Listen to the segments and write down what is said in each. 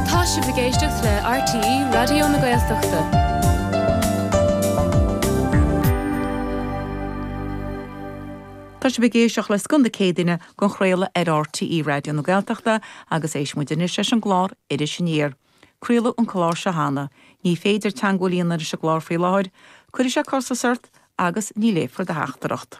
Tá sibh ag éisteacht le RTÉ Raidió na Gaeltachta. Tá sibh ag éisteacht le Scoth na Céadaoine den chraoladh ar RTÉ Raidió na Gaeltachta agus éist muid anois leis an gclár Iris Aniar. Craoladh an clár seo cheana. Ní féidir teagmháil a dhéanamh leis an gclár faoi láthair. Cuirfidh sé costas ort agus ní léifear do theachtaireacht.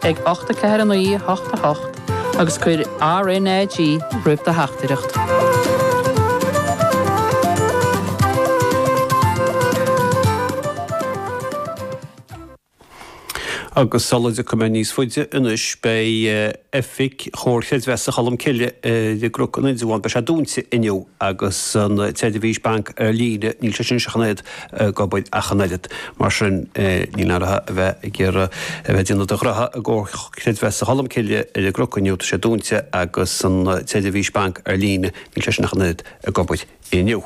ag 8 4 9 8 8 agus cuir RNAG roimh do theachtaireacht. Agus sula dtéann muid níos faide anois, beidh oifig Chomhar Chreidmheasa Cholm Cille ar an gCnoc in Indreabhán, beidh sé dúnta inniu, agus an tseirbhís banc ar líne, níl sé sin ach an oiread ag obair ach an oiread. Mar sin, ní fhéadfaidh tú a bheith ag iarraidh a bheith ag déanamh do ghraithe i gComhar Creidmheasa Cholm Cille ar an gCnoc inniu, tá sé dúinte agus an tseirbhís banc ar líne, níl sé sin ach an oiread ag obair inniu.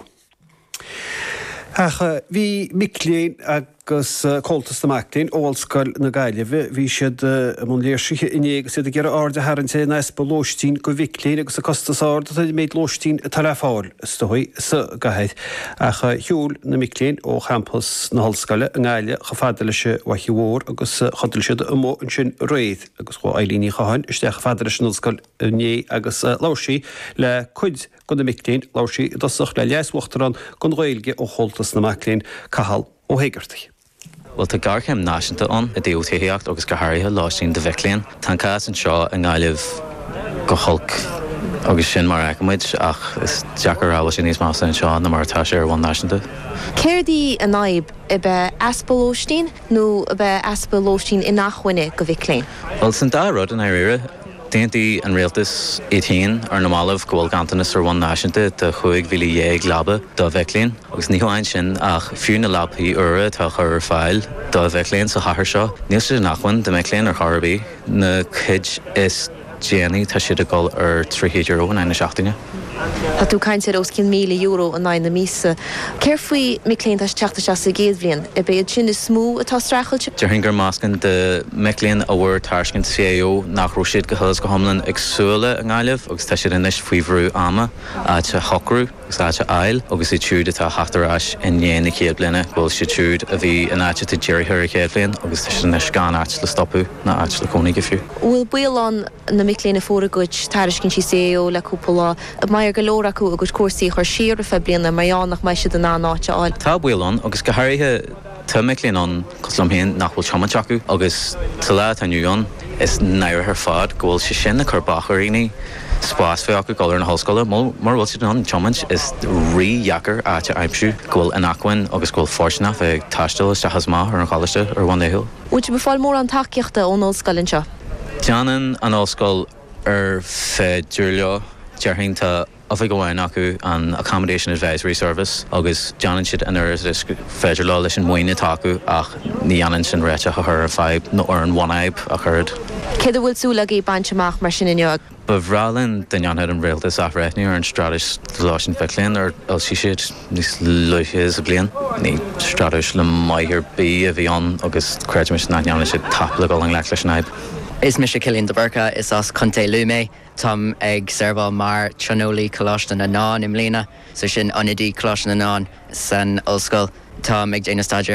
Ach bhí mic léinn agus Comhaltas na Mac Léinn ó Ollscoil na Gaillimhe, bhí siad i mbun léirsithe inné agus iad ag iarraidh aird a tharraingt ar an easpa lóistín do mhic léinn agus an costas ard atá ar an méid lóistín atá le fáil. is dóigh, sa gcathair, ach shiúil na mic léinn ó champas na hollscoile i nGaillimh chomh fada leis an bhFaiche Mhór agus chodail siad amuigh ansin aréir agus chuaigh Eileen Ní Chatháin isteach chomh fada leis an ollscoil inné agus labhair sí le cuid de na mic léinn, labhair sí i dtosach le Leas-Uachtarán don Ghaeilge ó Chomhaltas na Mac Léinn, Cathal Ó hÉigeartaigh. Bhuel, tá géarchéim náisiúnta ann i dtaobh tithíocht agus go háirithe lóistín do mhic léinn. Tá an cás anseo i nGaillimh go holc agus sin mar a fheiceann muid ach is deacair a rá an bhfuil sé níos measa anseo ná mar atá sé ar bhonn náisiúnta. Céard í an fhadhb? Ab é easpa lóistín nó ab é easpa lóistín inachmhainne do mhic léinn? Bhuel, sin dá rud i ndáiríre. D'aontaigh an rialtas iad féin ar na mallaibh go bhfuil ganntanas ar bhonn náisiúnta de 15,000 leaba do mhic léinn. Agus ní hamháin sin ach fiú na leabaí úra atá á chur ar fáil do mhic léinn sa chathair seo, níl siad inacmhainne do mhic léinn ar chor ar bith. Na cuid is déanaí tá siad ag dul ar €300 in aghaidh na seachtaine. Tá tú ag caint ar os cionn €1,000 in aghaidh na míosa. Céard faoi mic léinn atá ag teacht isteach sa gcéad bhliain? Ab iad sin is mó atá ag streachailt? Déarfainn gur meascán de mhic léinn a bhfuair tairiscint CAO nach raibh siad go huile is go hiomlán ag súil leo i nGaillimh agus tá siad anois faoi bhrú ama áit a shocrú agus áit a fháil agus iad siúd atá ag theacht ar ais i ndiaidh na chéad bhliana go bhfuil siad siúd a bhí in áiteacha dírithe ar an chéad bhliain agus tá siad anois gan áit le stopadh. ná áit le cónaí aige fiú. An bhfuil baol ann mic léinn a fuair a gcuid tairiscintí CAO le cúpla lá, a mbeidh ar go leor acu a gcuid cúrsaí a chur siar ar feadh bliana mar gheall nach mbeidh siad in ann áit a fháil? Tá baol ann agus go háirithe tá mic léinn ann cosúil liom féin nach bhfuil tiomáint acu agus sa lá atá inniu ann is náireach ar fad go bhfuil sé sin ag cur bac ar dhaoine spás bheith acu dul ar na hollscoile mar mura bhfuil siad in ann tiomáint is rídheacair áit a aimsiú go bhfuil inacmhainn agus go bhfuil fóirsteanach bheith ag taisteal isteach is amach ar an choláiste ar bhonn laethúil. Bhfuil sibh ag fáil mórán tacaíochta ón ollscoil anseo? Déanann an ollscoil ar féidir leo, déarfainn. Tá oifig amháin acu, an Accommodation Advisory Service, agus déanann siad an oiread agus is gur féidir leo leis an mhaoin atá acu ach ní dhéanann sin réiteach a chur ar fadhb nó ar an bhunfhadhb ach oiread. Céard a bhfuil súil agaibh baint amach mar sin inniu? Ba bhreá linn dá ndéanfadh an Rialtas athbhreithniú ar an Straitéis Lóistín Mhic Léinn ar fhoilsigh siad níos luaithe sa bhliain. Ní straitéis maith ar bith a bhí ann agus creidimid nach ndéanann siad tap le dul i ngleic leis an fhadhb. Is mise Cillian de Búrca, is as Contae Lú mé. Táim ag seirbheáil mar Tionólaí Coláiste na nDán i mbliana, so sin ionadaí Coláiste na nDán san ollscoil. Táim ag déanamh staidéir